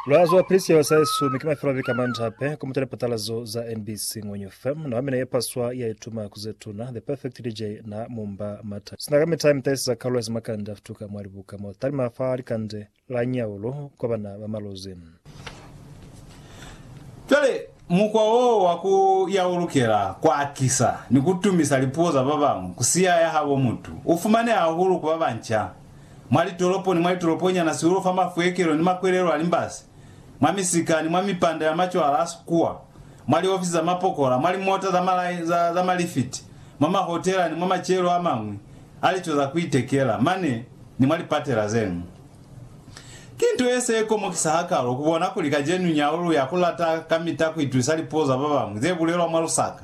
Mulazo wa pili siyawa sa Yesu mi ki mafilafi ka mantape ku mutela patalazo za NBC Ngwenyu FM. Na mina ye paswa ya ituma ku ze tuna, The Perfect DJ na mumba mata. Sina ka mita mi tahisiza kalulo ya simakande a futuka mwa libuka mo talima fa likande la Nyaulo kwa bana ba malozi. Cwale, mukwa wo wa ku ya u lukela ku akisa ni ku tumisa lipuo za ba bañwi ku siya ya habo mutu u fumaneha hahulu ku ba banca. mwa litolopo ni mwa litoloponyana sihulu fa mafuekelo ni makwelelo a limbasi, mwa misika ni mwa mipanda ya macwala a sikuwa, mwa liofisi za mapokola, mwa limota za malai, za, za malifiti, mwa mahotela ni mwa macelo a mañwi a lico za ku itekela, mane ni mwa lipatela ze ñwi. Ki nto ye se komokisa hakalo ku bona kuli kacenu nyau lu ya ku lata kamita ku itusa lipuo za ba bañwi ze bulelwa mwa lusaka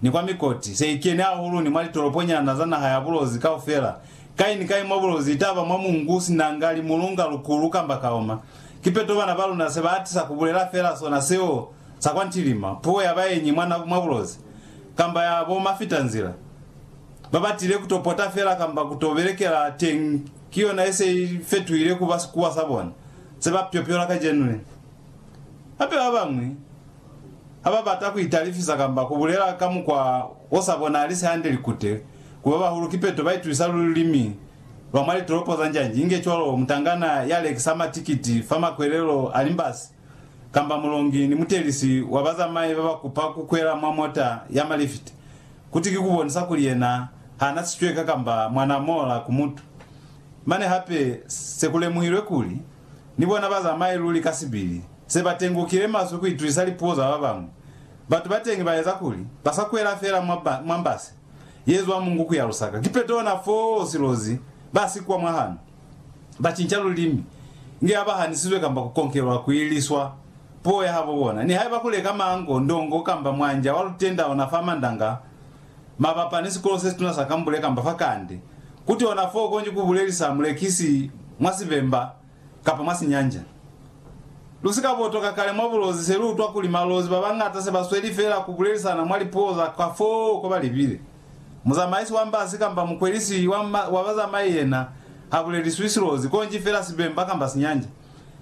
ni kwa mikoti, se i keni hahulu ni mwa litoloponyana za naha ya bulozi kaufela Kai ni kai mwa bulozi, itaba mwa mungu, sinanga, limulunga, lukulu, kamba kaoma, kipeto bana ba luna se ba atisa ku bulela fela sona seo sa kwa ntilima, puo ya baenyi mwa, mwa bulozi, kamba ya bo mafitanzila. Ba batile ku to pota fela kamba ku to belekela teñi, ki yona ye se i fetuhile ku ba sikuwa sa bona se ba pyopyola kacenu le. Hape ba bañwi ha ba bata ku italifisa kamba ku bulela ka mukwa o sa bonahali se hande likute Ku ba bahulu ki peto ba itusisa lulimi lwa mwa litolopo za njanji, inge cwalo mutangana ya lekisa matikiti fa makwelelo a limbasi, kamba mulongi ni mutelisi wa bazamai ba ba kupa ku kwela mwa mota ya malifiti, kuti ki ku bonisa kuli yena ha na sicweka kamba mwa na mola ku mutu. Mane hape se ku lemuhilwe kuli, ni bona bazamai luli ka sibili se ba tengukile maswe ku itusisa lipuo za ba bañwi. Batu ba teñi ba eza kuli ba sa kwela fela mwa mbase. ye zwa mungu ku ya lusaka. Ki petona fo silozi ba si kwa mwa hano, ba cinca lulimi, inge ha ba hanisizwe kamba ku konkelwa ku iliswa puo ya habo bona. Nihaiba ku leka mango, ndongo, kamba mwanja wa lutenda ona fa Mandanga, mabapa ni sikolo se situna sa Kambule kamba fa Kande, kuti ona fo konji ku bulelisa mulekisi mwa sibemba, kapa mwa sinyanja. Lu si ka botoka kale mwa bulozi se lu utwa kuli malozi ba bañata se ba sweli feela ku bulelisana mwa lipuo za ka foo ko ba libile. Muzamaisi wa mbasi kamba mukwelisi wa wa bazamai yena ha buleliswi silozi konji feela sibemba kamba sinyanja,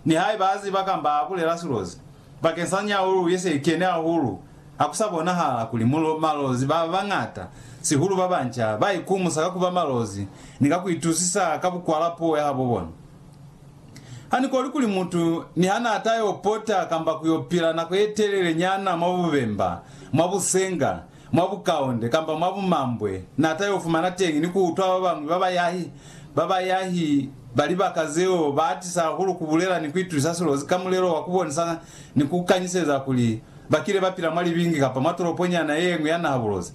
nihaiba a ziba kamba a bulela silozi. Bakeng sa nyaulu ye se kene hahulu, ha ku sa bonahala kuli malozi ba bañata, sihulu ba banca, ba ikumusa ka ku ba malozi ni ka ku itusisa ka bukwala puo ya habo bona. Ha ni koli kuli mutu niha n'a ta yo pota kamba ku yo pila nako ye telele nyana mwa bubemba, mwa busenga, mwa bukaunde kamba mwa bumambwe, n'a ta y'o fumana teñi ni ku utwa ba bañwi ba bayahi ba bayahi ba libaka zeo ba atisa hahulu ku bulela ni ku itusa silozi ka mulelo wa ku bonisa ni ku kanyiseza kuli ba kile ba pila mwa libingi kamba mwa toloponyana ye ñwi ya naha bulozi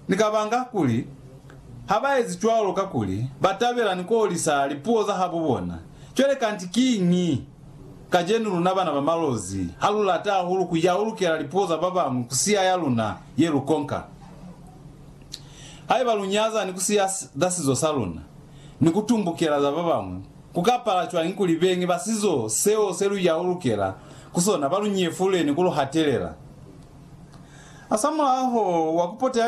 ni kabanga kuli ha ba ezi cwalo kakuli ba tabela ni ku olisa lipuo za habo bona. Cwale kanti kiñi? Kacenu luna bana ba malozi, ha lu lata hahulu ku yaulukela lipuo za ba bañwi ku siya ya luna ye lu konka. Haiba lu nyaza ni ku siya za sizo sa luna ni ku tumbukela za ba bañwi, ku ka pala cwañi kuli beñi ba sizo seo se lu yaulukela ku sona ba lu nyefule ni ku lu hatelela? Hasamulaho wa ku poteha